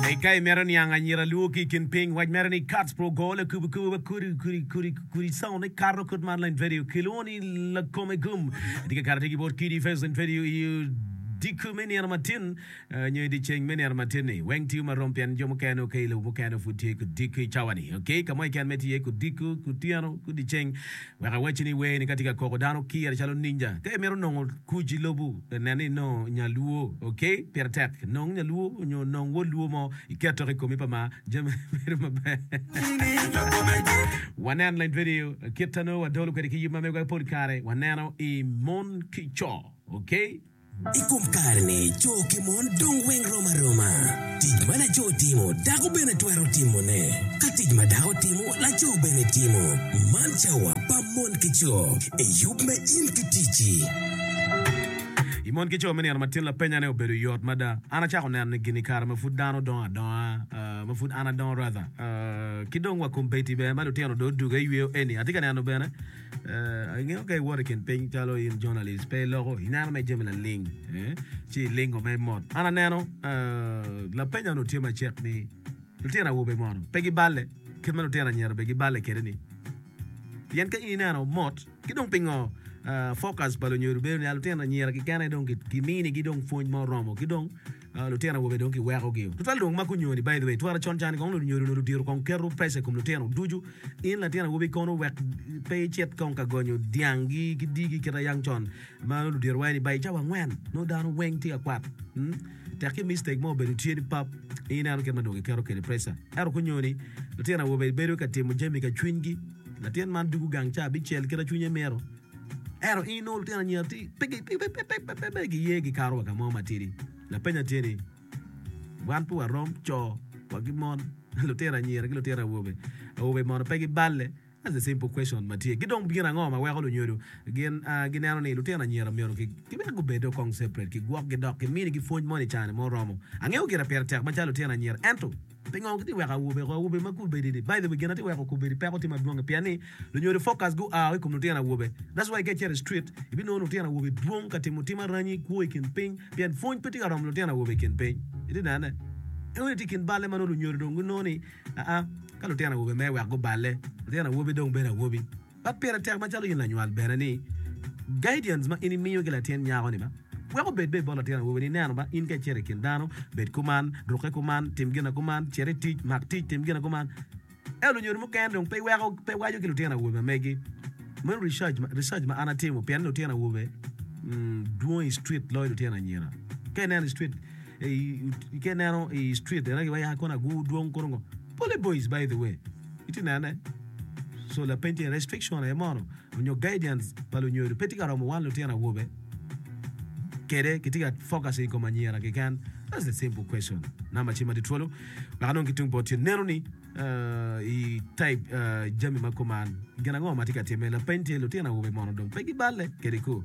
Tek ka imito niang anyira luo ki i kin piny. Wac mere ni Katz pro Gole kubu kubu ba kudi kudi kudi kudi sawo ne kato kut mar la invedio kilwongo ni lakome gum. Atye ka kato atir ki bot kidi i first invedio i odiko me nino matin nyo i dyeceng me nino matin ni. Weng tiyo ma rom pien jo mukene oke i lobo mukene pud tye ki odiko i cawa ni. Oke i ka mo keken ma itye iye ki odiko, ki otyeno, ki dyeceng. Wek awacci ni wer-ni ka tye ka koko dano kire calo ninja. Ka imito nongo kuc i lobo, nen ni inongo Nyaluo. Ok? Pire tek. Nong Nyaluo nyo nong wod Luo mo iket tok i komi pa ma, jami bedo maber. Wanen leng vidio kit ta nongo wadolo kwede ki yub ma megwa pol kare waneno i Mon ki Co. Ok? I kom kare-ni, co ki mon dong weng rom aroma. Tic ma laco timo, dako bene twero timone. Ka tic ma dako timo, laco bene timo. Man cawa pa mon ki co. Eyub me in ki ticci. I mon ki co me nino matin, lapenyane obedo yot mada. An acako neno ni gin i kare ma pud dano dongo adonga, ma pud an adongo rather, ki dong wa kom Betty bene ma lutino dong oduge yweyo eni, atye ka neno bene, Eh, ingeyo ka iwoto i kin piny calo in journalist pe iloko ineno me jami laling eh, ci ilingo ma imot an aneno eh, lapenya nu tye macek ni lutino awobe mono pe giballe kit ma lutino anyira be giballe kede ni pien ka in ineno mot ki dong pingo eh, focus pa lunyodo bedo ni ah, lutino anyira kikene dong ki- kiminigi dong pwony ma oromo ki dong Lutino awobe dong kiwekogi tutwal dong mako nyoni by the way twara con cani kong nongo nyodi onongo diro kong keto pressure ikom lutino ducu in latin awobi kono wek pe icit kong ka gonyo dyang gi ki digi kit ayang con ma nongo ludiro wa ni by cawa angwen nongo dano weng tye ka kwat tek ki mistake mo obedo tye ni pap ineno kit ma dong kiketo kede pressure ento ko nyoni lutino awobe bedo ka timo jami ka cwiny gi latin man dugu gang ca bicel kit acwinye mito. Ento in inongo lutino anyira ti pe gi pe pe pe pe pe giye gikato wa ka mo matidi. Lapenya tye ni wan pe warom co wa ki mon lutino anyira ki lutino awobe awobe mono pe giballe? That's a simple question ma tye. Ki dong gin ango ma weko lunyodo gin ah, gineno ni lutino anyira myero ki ki wek gubedde okong separate ki gwokgi dok ki minigi pwony mo ni caa ni mo romo. Angeyo gire pire tek macalo lutino anyira ento Pingo kitye weko awobe oko? Awobe ma gubedi ni, by the way, gin atye weko kubedi peko tye madwong pien ni lunyodo focus gu aa o i kom lutino awobe. That's why ka icito i street ibinongo lutino awobe dwong ka timo tim aranyi kwo i kin piny pien pwony pe tye ka romo lutino awobe i kin piny. Itye nene? Inongo ni tye i kin balle ma nongo lunyodo dong ginongo ni aa ka lutino awobe mere wek guballe. Lutino awobi dong bedo awobi. Ma pire tek macalo in lanywal bene ni guidance ma in imiyo ki latin nyako ni ma weko obed be bot latin awobi ni neno ba in ka icito ikin dano bed kuman, ruke kuman, tim gina kuman, cit itic, mak tic, tim gina kuman. Ento lunyodo mukene dong pe weko pe waco ki lutino awobe ma megi. Meno research ma research ma an atimo pien lutino awobe dwong i street loyo lutino anyira. Ka ineno i street ka ineno i street ena giwaco ya kona gu dwong kunu ngo. Pole boys by the way. Itye ka nene? So lapeny tye ni, restriction aye mono onyo guidance pa lunyodo pe tye ka romo wan lutino awobe? Kede kitye ka focusing ikom anyira keken? That's the simple question. Number ci madi twolo wek anong ki tung bot yo. Neno ni i type jami ma kuman gin ango matye ka time? Lapeny tye lutino awobe mono dong pe giballe kede ko?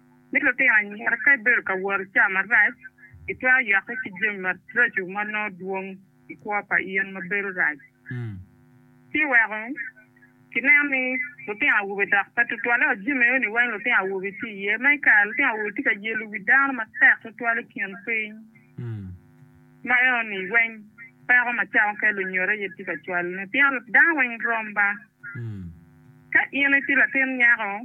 ni lutino anyira ka ibedo ka woro i cawa marac, itwero yokke ki jami maraco ma nongo dwong i kwo pa in ma bedo rac. Ci weko kineno ni lutino awobe dok pe tutwalle i ot jami meno-ni weng lutino awobe tye iye. Ma i kare lutino awobe tye ka yelo wi dano matek tutwal i kin piny. Ma eno-ni, weng peko macalo ka lunyodo aye tye ka cwalo ni pien dano weng rom ba. Ka in itye latin nyako,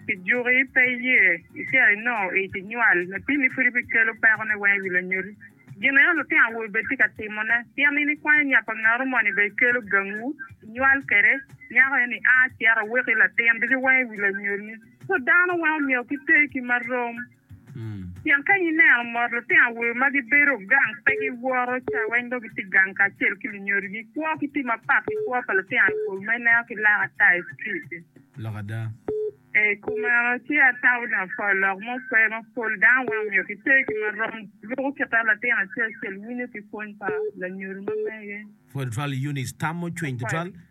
pi juki pe iye icito inongo ic inywal, lapimi pud ibikelo pekone weng i wi lanyodi. Gin eno lutino awobe bene tye ka timone, pien in ikwanyo nya pa ngaro moni bene ikelo gangwu inywal kwede. Nyako eno-ni a cito weko i latin ducu weng i wi lanyodini. So dano weng omyero ki ter ki ma rom. Pien ka ineno mot litino awobe ma gibedo gang, pe giwoto cawa, in dong itye gang kacel ki lunyodigi, ikwo ki tim mapat ki kwo pa litino awobe ma ineno ki lak ata i strit-ti. Lok ada. I kom meno, ci atamo ni apwony lok mo pe ma pol dano weng omyero giter ki ma rom luko kit ma latin acel acel winyo ki pwony pa lanyodo ma mege. Pwod tutwal Eunice tamo cwiny tutwal.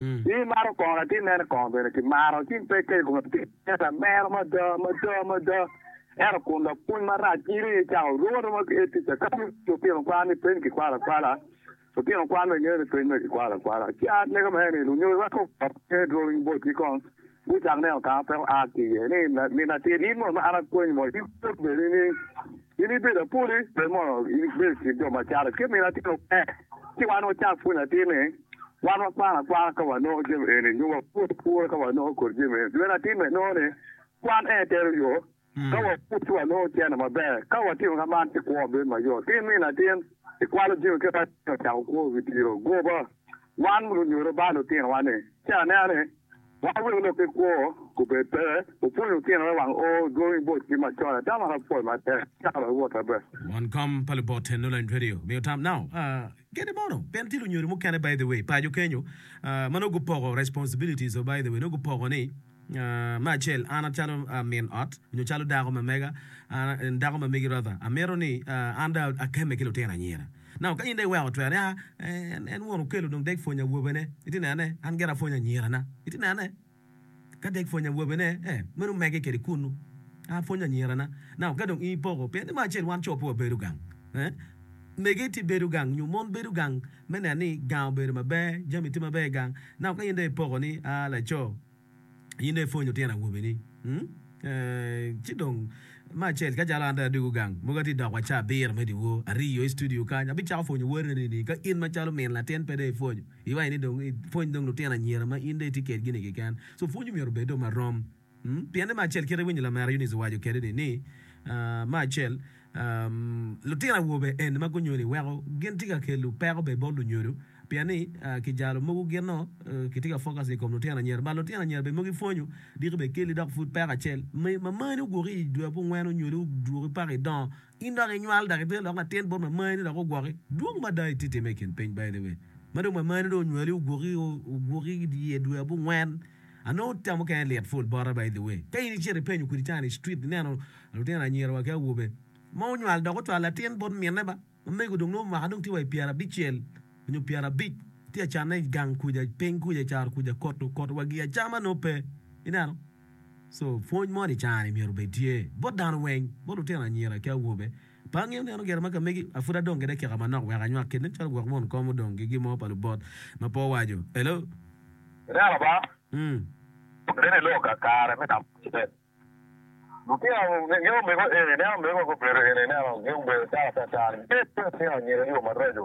Ci imaro kongo latin mene kongo bene kimaro ci pe kelo kome pire ento amero mada mada mada ento kun lapwony marac in aye icako romo aroma ki etica ka dong lutino kwan ni peny kikwalo akwala lutino kwan bene ngeyo ni peny mere kikwalo akwala ci amego mere ni lunyogi weko pe dwong botgi kong Gucako neno kama pe oa ki iye ni, Min atir, in mono ma an apwonyi mono in pwod bene ni in ibedo apuli? Pe mono in ibedo i kin jo ma carre ki min atir ope? Ci wan wacak pwonyo atir ni, Wan wakwano akwara ka wanongo jami eni nyo wapur apura ka wanongo kodi jami eni. Lwene atir mere nongo ni, Kwan en etero yo Ka wapud ci walongo cene maber. Ka watimo ka man ci kwo bedo mayot. Ki nino atin, ikwalo jami kit ma Yecu ocako kwo i wi diro goba. Wan lunyodo ba lutinowa ni, Cen anena ni wan wek lok ki kwo gubed pe wupwony lutino wek wang o dwongi bot kit macon ata ma ka pwod matek caka dong wot maber. Won kom pa lubote Nolan Twerill omiyo tam nao kene mono pien tye lunyodo mukene by the way paco kenyo ma nongo gupoko responsibilities o by the way nongo gupoko ni Me acel, an calo min ot nyo calo dako ma mega, dako ma megi Rotha, amito ni an dong akemme ki lutino anyira. Now ka in dong iweko twero ni aa, en wun okelo dong dek pwonyo awobene, itye neno ne? An gira apwonyo anyirana. Itye neno ne? Ka dek pwonyo awobene, ee, meno omege kede kunnu. An apwonyo anyirana. Now ka dong in ipoko, pien ni me acel wan co pe wabedo gang, ee, mege tye bedo gang nyo mon bedo gang. me neno ni gang obedo maber, jami tye maber i gang. Naka ka in dong ipoko ni, aa laco, in dong ipwonyo tyen awobini, eeh, ci dong me acel kacalo an dong adwogo gang mogo atye dok wa ca abiro me dyewor aryo i studio kany, abicako pwonyo woteni ni ka in macalo min latin pe dong ipwonyo iwaci ni dong ipwony dong lutino anyira ma in dong itye kedgi-ni keken. So pwony omyero obed dong marom. Pienni me acel kit iwinyo lamera Eunice owaco kedi ni ni me acel lutino awobe eni ma gunyoli weko gin tye ka kelu peko bene bot lunyodo pien ni ki jalo mogo gin nongo ki tye ka focus ikom lutino anyira but lutino anyira bene mogo ipwonyo diki bene keli dok pud peko acel ma mani oguki idwe abongwen onyoli oduki paka idongo In dok inywal dok ibedo lok latin bot mamayeni dok ogwoki. Dwong mada itye time i kin piny baine we ma dong mamayeni dong onywali ogwoki ogwoki idye dwe abongwen. Anongo tam mukene lit pul bota by the way. Ka in icito ipenyo kwedi can i street ineno lutino anyira wa ki awobe ma onywal dok ocwalo latin bot mine ba mamego dong nongo mwaka dong tye wa i pyera abicel nyo pyera abic tye acanne gang kuca piny kuca caro kuca koto koto wa gi acama nongo pe ineno. So, pwony moni i car-ri myero obed tye bot dano weng, bot lutino anyira ki awobe. Pe angeyo ni en ogero ma ka megi, a pud adong kede kika manok wek anywak kit nen calo gwok won kom odong ki gin mo pa lubot ma pe owaco. Hello? Ineno ba, Mm. nen i lok ka kare me tamo citep. Lutino, nge omego eni, ineno omego wa gubedo eni, ineno, nge omego calo atata-ni, bed ki lutino anyira i yo maraco.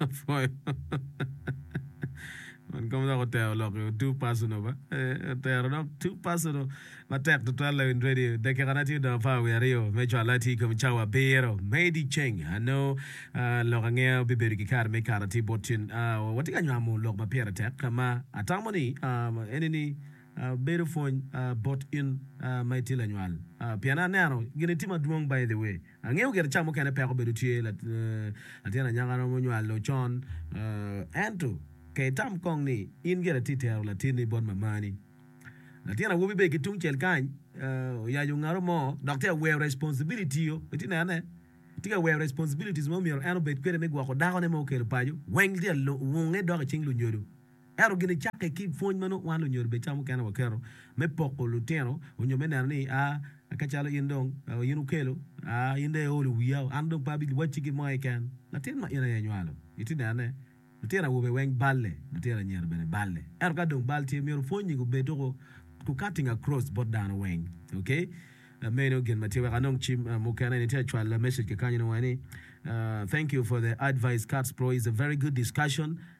Apwoyo. Man kom dok otero lok i too personal ba. Eh, otero dok too personal. Matek tutwal lawin radio. Dakika na tye dong apar wiye aryo me cwal atii kom cawa abiro. Made i ceng. Ano ah, lok ange bibedo ki kare me kara ti bot cen. Ah, watye ka nywamo lok ma pire tek ka ma atamo ni ah, ene ni ah, bedo pwony ah, bot in ah, ma itye lanywal. Ah, pien aneno gini tye madwong by the way. Angeyo gire ca mukene peko bedo tye, latin anyaka romo nywalo con, ento pe itam kong ni in gire itye tero latinni bot mamani. Latin awobi bene ki tungcel kany oyaco ngaro mo dok tye ka weyo responsibility-o, itye nene? Tye ka weyo responsibilities ma omyero en obed kwede me gwoko dakone ma okelo paco, weng tye ka wunge dok icing lunyodo. Ento gin icakke ki pwony ma nongo wan lunyodo bed ca mukene waketo me poko lutino onyo me neno ni a ka calo in dong in wukelo a in dong iolo wiya o an dong pe abi wacci gin mo keken. Latin ma in aye inywalo itye nene lutino awobe weng balle lutino anyira bene balle ento ka dong bal tye myero pwonyi gubed tuko ku cutting across bot dano weng ok meno gin ma tye wek anong cim mukene ni tye cwalo message ki kany ni wai ni thank you for the advice Kats bro is a very good discussion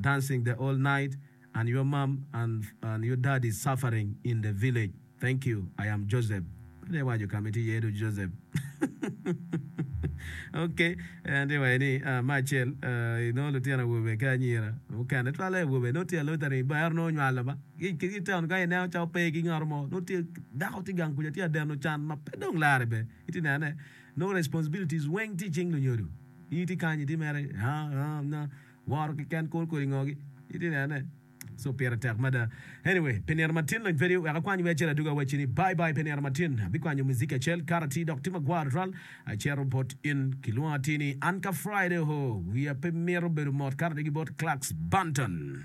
Dancing the all night and your mom and your daddy suffering in the village thank you I am Joseph pud iwaco kama itye iye du Joseph ok an tye waco ni me acel inongo lutino awobe ki anyira mukene twale awobe nongo tye aluthering ber nongo onywalo ba ki town kany ineno cawa pe ki ngat mo nongo tye dako tye gang kuca tye adeno can ma pe dong lare be itye nene nongo responsibilities weng tye icing lunyodo in itye kany itye mere haa haa. Woro kiken kor kodi ngogi itye neno ne so pire tek mada anyway pe nino matin lony pedi wek akwany wer acel aduga wacci ni bye bye pe nino matin abikwanyo muziki acel kato atir dok tye magwar tutwal acito bot in kilwongo atir ni an ka Friday ohoo wiya pe mito bedo mot kato dok ki bot Clarks Banton.